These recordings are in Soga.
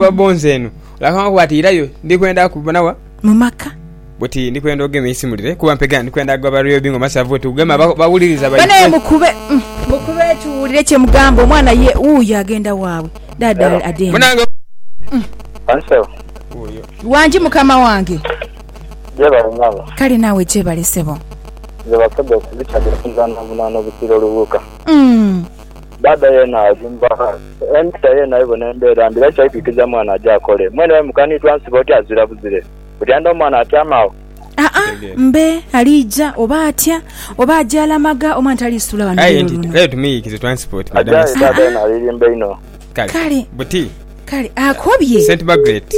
Bw'oba bbo nze eno. Olakangako bwati irayo ndi kwenda kubona wa? Mu maka. Buti ndi kwenda ogema eisimulire kuba mpegana ndi kwenda gwa Barrio Bingo Masavu oti kugema bawuliriza baiffe. Banaye mukube mukube tuwulire kye mugamba omwana ye wuuyo agenda waabwe. Daada ade eno. Masavu. Wuuyo. Wangi mukama wange. Gyebale nyabo. Kale naawe gyebale ssebo. Nze basobola okubitadde okuzaana bunaana obusiro Lubuuka. Umm. Dada yena alimba. Empisa yena ebona embeera mbi era kyaikwikiza mwana aje akole. Mwene we mukanidwa nsibe oti azira buzire. Otya nda omwana atyame agho. Aa mbe aliija oba atya? Oba aje alamaga omwana taliisula wano Aye luno nti luno. kale tumuyiikize transport madam Ajaye Esitha. dada yena alirimba inho. Kale Kale. buti Kale akobye. St Margaret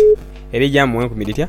eri gyamuwa enkumi dhitya?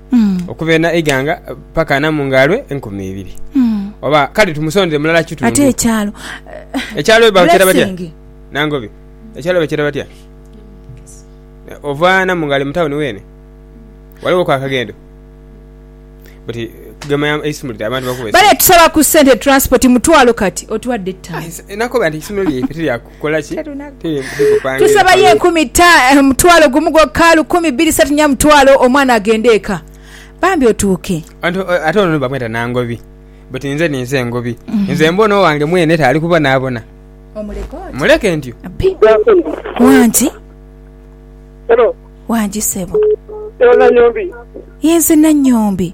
okuva ena eighanga paka ana mu ngaalwe enkumi ibiri. Oba kale tumusondere mulala kitundu. Ate ekyalo? Ekyalo bakyeta batya? Nangobi. Ekyalo bakyeta batya? Ova Namungaali mu tawuni weene? Waliwo ku akagendo? Buti gema ya eisumulire abantu bakuwe. Bale tusaba ku sente transport mutwalo kati otuwadde ttaano. Nakoba nti eisomero lyaife teryaku. Kola ki? Tusaba ye nkumi ta, mutwalo gumu gwokka, lukumi, bbiri, satu, nya mutwalo, omwana agende eka. Bambi otuuke. Ante, ate ono ni bamweta Nangobi. But inze ninze engobi. Mm-hmm. Nze mbona owange mwene ta ali kubonaabona. Omuleke oti? Muleke ntyo. Bi. Wangi. Hello. Wangi sebo. Yo Nanyombi. Yenze Nanyombi.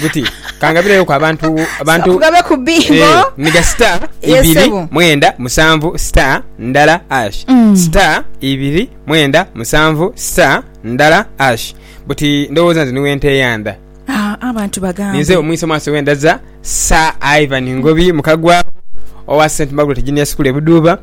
buti kangabireyoku abantu abantu kugabe ku bingo eh, niga star ibiri mwenda musanvu star ndala ash mm. star ibiri mwenda musanvu star ndala ash buti ndowooza nze niwe nte eyanda ah, abantu bagambe ninze omwiso maaso wendaza sa ivan ngobi mukagwa owa st margaret junior school ebuduuba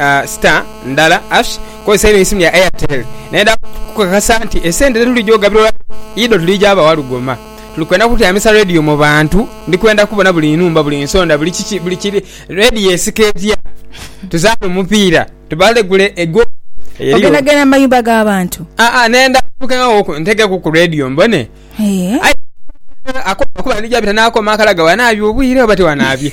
uh, star ndala ash kozesa eno isimu ya airtel naye da kukakasa nti esente tetulija ogabirwa ido tulija abawa lugoma tuli kwenda kutyamisa radio mu bantu ndi kwenda kubona buli numba buli nsonda buli kiki buli kiri radio esika etya tuzaana omupiira tubalegule ego eriyo ogenda genda mu mayumba g'abantu ah ah nenda kukengawo ntegeku ku radio mbone Eh. Ai- akoma kuba ndija bita nakoma akalaga wanaabye obwire oba tewanaabye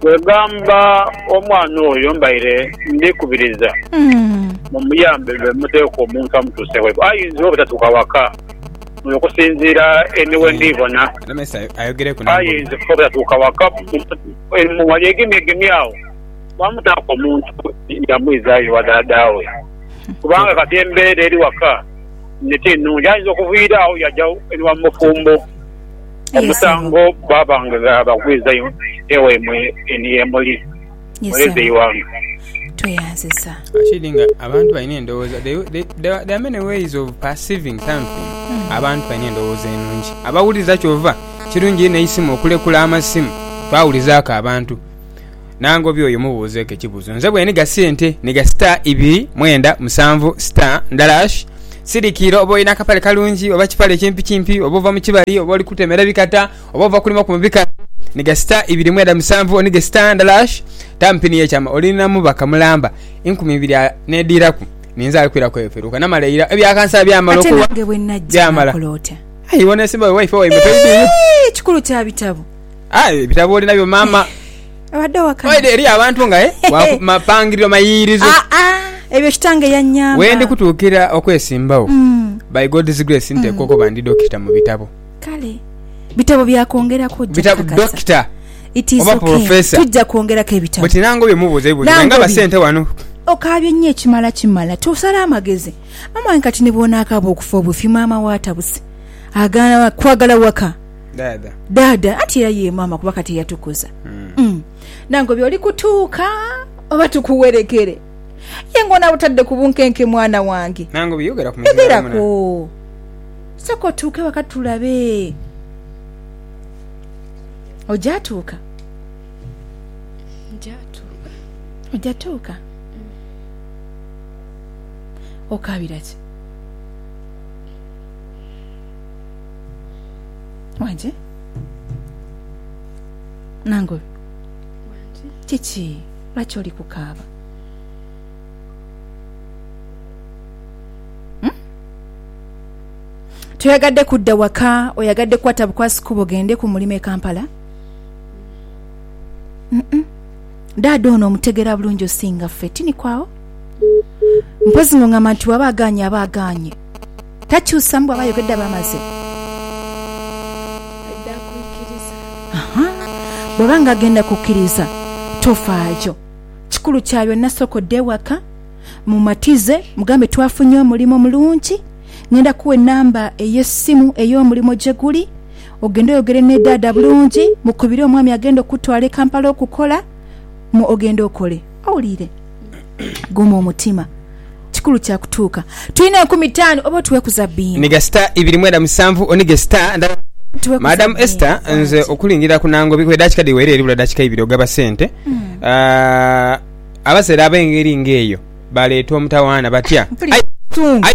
Kwegamba omwana oyo mbaire ndi kubiriza mumuyambe lwe muteeka omuntu amutuuse ghaibwe. Ayinza oba tatuuka waka muno okusinziira ni we ndi bona. Ayinza oba tatuuka waka mu wali egemyegemi agho bamutaaku omuntu ye amwizaayo ewa dhaadha we. Kubanga kati embeera eri waka ti nnungi. Ayinza okuviira agho yaja ewa mufumbo. Omusango baba nga bagwiza ewaimwe eno ye muli, mweeze eighanga. Tweyanziza. Rashid nga abantu balina endowooza they, they, there are- there are many ways of perceiving something abantu balina endowooza enungi abawuliriza kyova kirungi neisimu okulekula amasimu twawulizaako abantu Nangobya oyo mubuuzeeku ekibuuzo. Nze bwe nhiga sente, nhiga sita ibiri, mwenda, musanvu, sita, ndala ash. Sirikiira oba olina akapale kalungi oba kipale kimpikimpi, oba ova mu kibali oba oli kutemera bikata, oba ova kulima ku mu bikata, nhiga sita ibiri, mwenda, musanvu, onhige sita, ndala ash. Taamu pini y'ekyama oli na mubaka mulamba enkumi ibiri a n'edhiiraku. Ninze ali kwiraku eyo peruuka. Namala ira, ebya kansala byamala okuwa, byamala. Aye bw'oneesimbawo wifi waibwe toidhiyo. Ekikulu kya bitabo. Ah, ebitabo oli nabyo mama. Abadde owakana. Oide eri abantu nga eh waku- mapangiriro mayiririzo. Ah, ah, ebyo kitange yanyamba. Wendi kutuukira okwesimbawo. Mm, By God's grace nteekwa okuba ndi dokita mu bitabo. kale. Bitabo bya kwongera kujja. Bitabo kakasa. dokita. It is oba okay. professor. Tujja kwongerako ebitabo. Buti nange obi mubuuza ebibuuzo Nange nga obi. basente wano. okaabye nnyo ekimala kimala tosala amagezi mama wange kati nebwonaakaaba okufa obufi maama we atabuse agaana kwagala waka Daada. Daada, anti era ye maama kuba kati eyatukuza. Mm. Nange obi oli kutuuka oba tukuwerekere? Ye ng'ono abutadde ku bunkenke mwana wange. Nange obi yogera ku muzibe wa muna. Yogerako. Sooka otuuke waka tulabe. Oja tuuka? Nja tuuka. Oja tuuka? Okaabira ki? Wangi. Nangobi. Wangi. Kiki? Lwaki oli kukaaba? Hmm? Toyagadde kudda waka, oyagadde kukwata bukwasi kubo gende ku mulimu e Kampala? Mm -mm. Daada ono omutegera bulungi osinga ffe, tini kwawo? Mpozi ng'ongamba nti waba aganye aba aganye. Takyusamu bwaba ayogedde aba amaze. Aidha kwikiriza. Aha. Bwaba nga agenda kukiriza tofaayo. Kikulu kya byonna sooka odde ewaka, mumatize, mugambe twafunye omulimu omulungi, ngenda kuwa enamba ey'essimu ey'omulimu gye guli, ogende oyogere ne daada bulungi, mukubire omwami agenda okukutwala e Kampala okukola, mu ogende okole. Owulire? Guma omutima kikulu kya kutuuka. Tulina enkumi itaanu oba otuwe ku za bini. Niga star ibiri mwenda musanvu onige star ndala. Madam Esther nze okulingirira ku Nangobi kuba edakika dhiwera eribula dakika ibiri ogaba sente aah abazere abengeri nga eyo baleeta omutawaana batya? Aye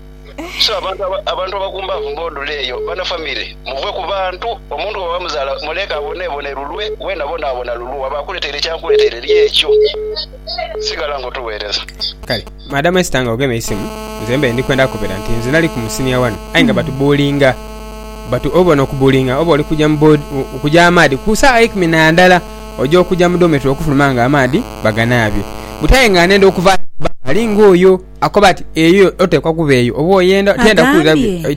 So abantu abantu abagumbaavu mb'odula eyo, bana famire, muve ku bantu. Omuntu bw'aba muzaala muleeke aboneebone lulwe, we nabwo naabona lulwo. Bw'aba akuleteire eky'ankuleteire, lya ekyo. Sigala ng'otuweereza. Kale Madam Esther nga ogema eisimu, nze mbaire ndi kwenda kubera nti nze nali ku musinia wano aye nga batubuulinga. Batu obona okubuulinga oba oli kuja mu board okuja amaadhi ku saagha eikumi na ndala oja okuja mu dormitory okufuluma nga amaadhi baganaabye. Buti aye nga nenda okuva aye nga baaba ali ng'oyo. Akoba ati, Eyo oteekwa kuba eyo, oba oyenda.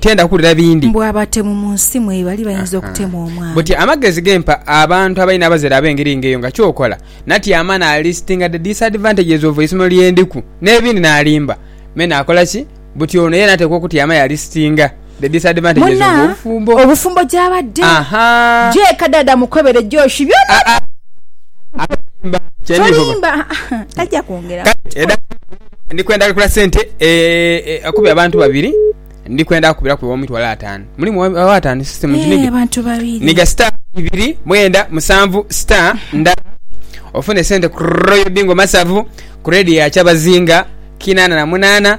Tiyenda kuwulira bindi. Mbu abatemu mu nsi mwe bali bayinza okutema omwana. Buti amagezi ge mpa abantu abalina abazadde ab'engeri ng'eyo nga ky'okola? Natyama naalistinga the disadvantages of eisomero lye ndiku, n'ebindi. Naalimba me naakola ki? Buti ono ye n'ateekwa okutyama yaalistinga. Muna, obufumbo gyabadde Gye kadaada mukobere Josh byona bye Tolimba tajja kwongera Kugenda Ndi kwenda kukubiraku ew'omitwalo ataanu. Mulimu owa ataanu sisita mu kinigi. Abantu babiri. Niga sita ibiri mwenda musanvu sita nda ofune sente ku Royal Bingo Masavu ku redio ya Kyabazinga kinana na munana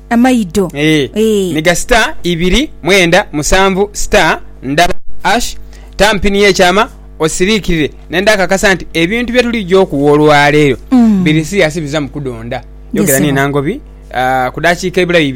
Amaido. Eeh. Eeh. Miga star ibiri mwenda musanvu star ndala ash tamu pini y'ekyama osiriikirire ne ndhakakasa nti ebintu bye tuligya okuwa olwaleero biri siriyasi bizamu kudonda. Yogera ni Nangobi ku daakiika ebula bibiri.